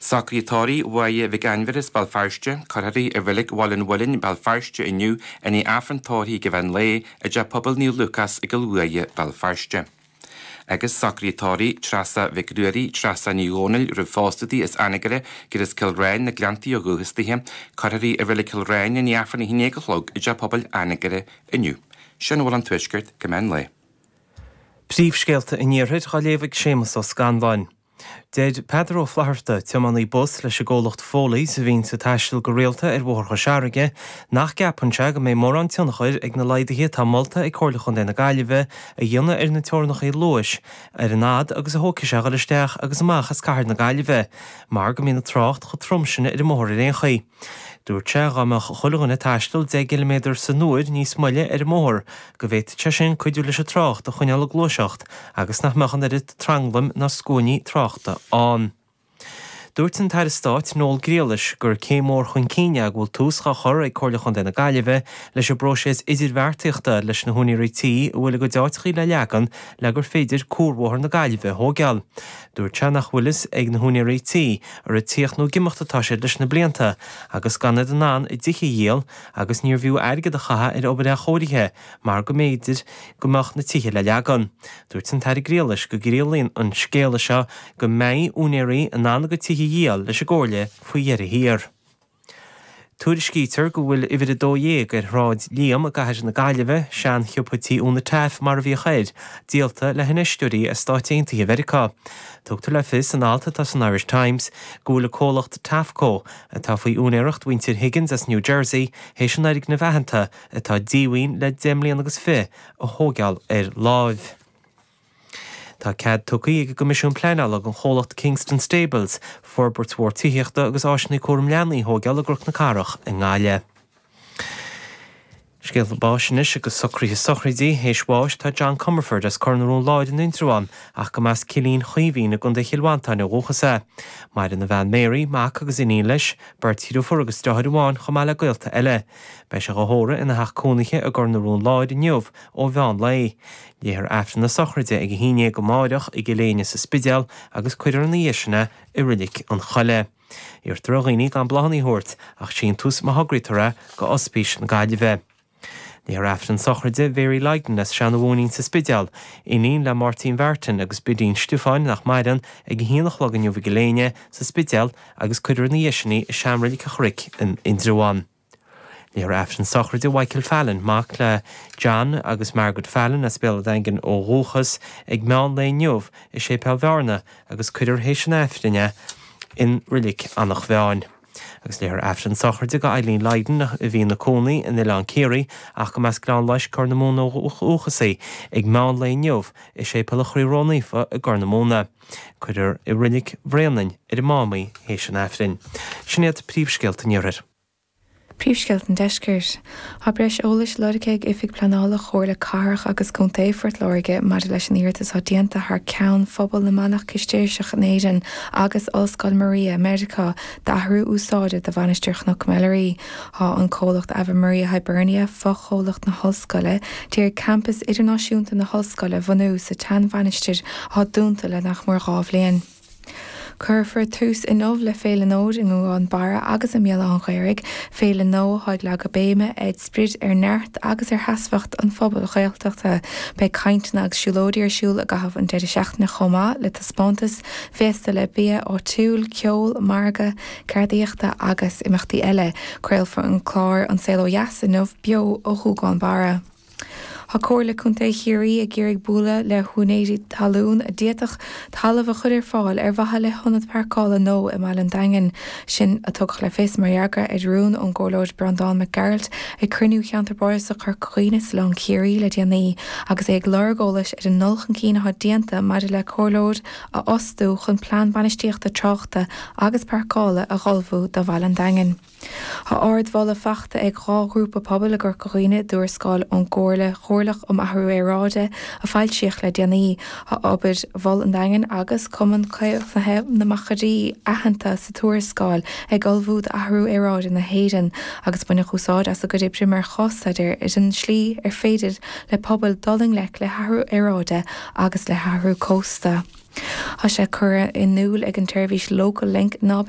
Socrú tórraimh Mháire Mhic Ainmhire as Béal Feirste, Cuirfear í i Reilig Bhaile an Mhuilinn, Béal Feirste inniu, i ndiaidh Aifreann tórraimh ag meán lae, i dTeach Pobail Naomh Lúcás i gCill Uaighe, Béal Feirste. agus Socrú tórraimh Treasa Mhic Ruairí, Treasa Ní Dhomhnaill roimh pósadh di as Anagaire agus as Cill Riáin, Na Gleanntaí ó dhúchas dithe, Cuirfear í i Reilig Chill Riáin, i ndiaidh Aifreann 1 A chlog, i dTeach Pobail Anagaire inniu. Sin a bhfuil ón Tuaisceart go meán lae. Príomhscéalta an Iarthair dhá léamh ag Séamas Ó Scanláin. Deir Peadar Ó Flatharta, tiománaí bus leis an gcomhlacht Foley's a bhíonn ag taisteal go rialta ar Bhóthar Chois Fharraige, nach gceapann sé go mbeidh mórán tionchair ag na laghduithe atá molta ag Comhairle Chontae na Gaillimhe a dhéanamh ar na teorannachaí luais ar an fhaid agus a thógfaidh sé a dhul isteach agus amach as cathair na Gaillimhe mar go mbíonn an trácht chomh trom sin ar an mbóthar ar aon chaoi. Dúirt sé dá mbeadh chuile dhuine ag taisteal deich gciliméadar san uair níos moille ar an mbóthar go bhféadfadh sé sin cuidiú leis an trácht a choinneáil ag gluaiseacht agus nach mbeadh an oiread tranglaim ná scuainí tráchta ann. Dúirt an tAire Stáit Noel Grealish gur céim mhór chun cinn é go bhfuil tús á chur ag Comhairle Chontae na Gaillimhe leis an bpróiseas idirbheartaíochta leis na húinéirí tí a bhfuil a gcuid áiteachaí le leagan le gur féidir cuarbhóthar na Gaillimhe a thóigeáil. Dúirt sé nach bhfuil fhios ag na húinéirí tí ar ag tíocht nó ag imeacht atá siad leis na blianta agus gan iad in ann a dtithe a dhíol agus níorbh fhiú airgead a chaitheamh ar obair athchóirithe mar go mb'fhéidir go mbeadh na tithe le leagan. Dúirt an tAire Grealish go gciallaíonn an scéala seo go mbeidh úinéirí in ann a gcuid tithe a dhíol leis an gComhairle faoi dheireadh thiar. Tuairiscítear go bhfuil uimhir 12 ar Shráid Liam i gCathair na Gaillimhe, seansiopa tí Úna Taaffe mar a bhíodh air, díolta le hinfheisteoirí as Stáit Aontaithe Mheiriceá. Tugtar le fios in alt atá san Irish Times go bhfuil an comhlacht Taafco, atá faoi úinéireacht mhuintir Higgins as New Jersey, théis an fhoirgneamh aitheanta, atá díomhaoin le deich mbliana agus fiche, a thógáil ar láimh. Tá cead tugtha ag an gCoimisiún Pleanála don chomhlacht Kingston Stables forbairt mhór tithíochta agus áiseanna cúram leanaí a thóigeáil i gCnoc na Cathrach i nGaillimh. Scéalta báis anois agus socruithe sochraidí théis bháis atá John Comerford as Cor na Rón Láir in Indreabhán ach go mba as Cillín Chaoimhín i gContae Chill Mhantáin ó dhúchas é. Maireann a bhean Mary, mac agus iníon leis, beirt dhriofúr agus deartháir amháin chomh maith le gaolta eile. Beidh sé á thórramh ina theach cónaithe i gCor na Rón Láir inniu ó mheán lae. Léifear Aifreann na sochraide ag a haon dhéag amáireach i gCill Éinne sa Spidéal agus cuirfear ina dhiaidh sin é i Roilic an Choilligh. Iarrtar ar dhaoine gan bláthanna a thabhairt ach síntiús má thograítear é go Ospís na Gaillimhe. Léifear Aifreann sochraide Mhary Lydon as Seanadh Mhóinín sa Spidéal, iníon le Máirtín Mhartin agus Bidín Stiofáin nach maireann, ag a haon a chlog inniu i gCill Éinne sa Spidéal agus cuirfear ina dhiaidh sin í i Sean-Roilic an Chnoic in Indreabhán. Léifear aifreann sochraide Mhichael Fallon, mac le John agus Margaret Fallon as Béal a' Daingin ó dhúchas, ag meán lae inniu i Séipéal Bhearna agus cuirear tar éis an aifrinn é i Reilig Eanach Mheáin. Agus léifear aifreann sochraide do Eileen Lydon, a bhí ina cónaí in Oileán Ciarraí ach go mb'as Gleann Loisc, Corr na Móna ó dhúchas í, ag meán lae inniu i Séipéal an Chroí Ró-Naofa i gCorr na Móna. Cuirfear i Reilig Bhréanainn ar an Mám í tar éis an Aifrinn. Sin iad príomhscéalta an Iarthair. Príomhscéalta an Deiscirt. Tá breis eolais lorgtha ag Oifig Pleanála Chomhairle Cathrach agus Contae Phort Láirge maidir leis an iarratas atá déanta thar ceann phobal na manach Cistéirseach in Éirinn agus Ollscoil Ave Maria, Meiriceá, d'athrú úsáide do Mhainistir Chnoc Mheilearaí. Tá an comhlacht Ave Maria Hibernia, fochomhlacht na hOllscoile, d'iarraidh Campas Idirnáisiúnta na hOllscoile a bhunú sa tseanmhainistir atá dúnta le nach mór dhá bhliain. Cuirfear tús inniu le Féile Nóid i nGúgán Barra agus i mBéal Átha an Ghaorthaidh, féile nua atá ag leagadh béime ar sprid ar neart agus ar sheasmhacht an phobail Ghaeltachta. Beidh cainteanna agus siúlóidí ar siúl i gcaitheamh an deireadh seachtaine chomh maith le taispeántas, féasta le bia áitiúil, ceol, margadh, Ceardaíochta agus imeachtaí eile. Craolfar an clár An Saol Ó Dheas inniu beo ó Ghúgán Barra. Tá Comhairle Contae Chiarraí ag iarraidh bualadh le húinéirí talún a d'fhéadfadh talamh a chur ar fáil ar mhaithe le hionad páirceála nua i mBaile an Daingin, sin a tugadh le fios mar fhreagra ar rún ón gComhairleoir Breandán Mac Gearailt ag cruinniú Cheantar Bardasach Chorca Dhuibhne Oileán Chiarraí le déanaí agus é ag lorg eolais ar an ndul chun cinn atá déanta maidir le Comhairleoir a fhostú chun Plean Bainistíochta Tráchta agus Páirceála a ullmhú do Bhaile an Daingin. Tá ardmholadh faighte ag dhá ghrúpa pobail i gCorca Dhuibhne i dtuarascáil ón gComhairle Chomhairleach um Athrú Aeráide a foilsíodh le déanaí. Tá obair Mhol an Daingin agus Cumann Caomhnaithe na Machairí aitheanta sa tuarascáil ag ullmhú d'athrú aeráide na hÉireann agus baineadh úsáid as a gcuid oibre mar chás-staidéar ar an tslí ar féidir le pobail dul i ngleic le hathrú aeráide agus le hathrú cósta. Tá sé curtha in iúl ag an tseirbhís Local Link ná beidh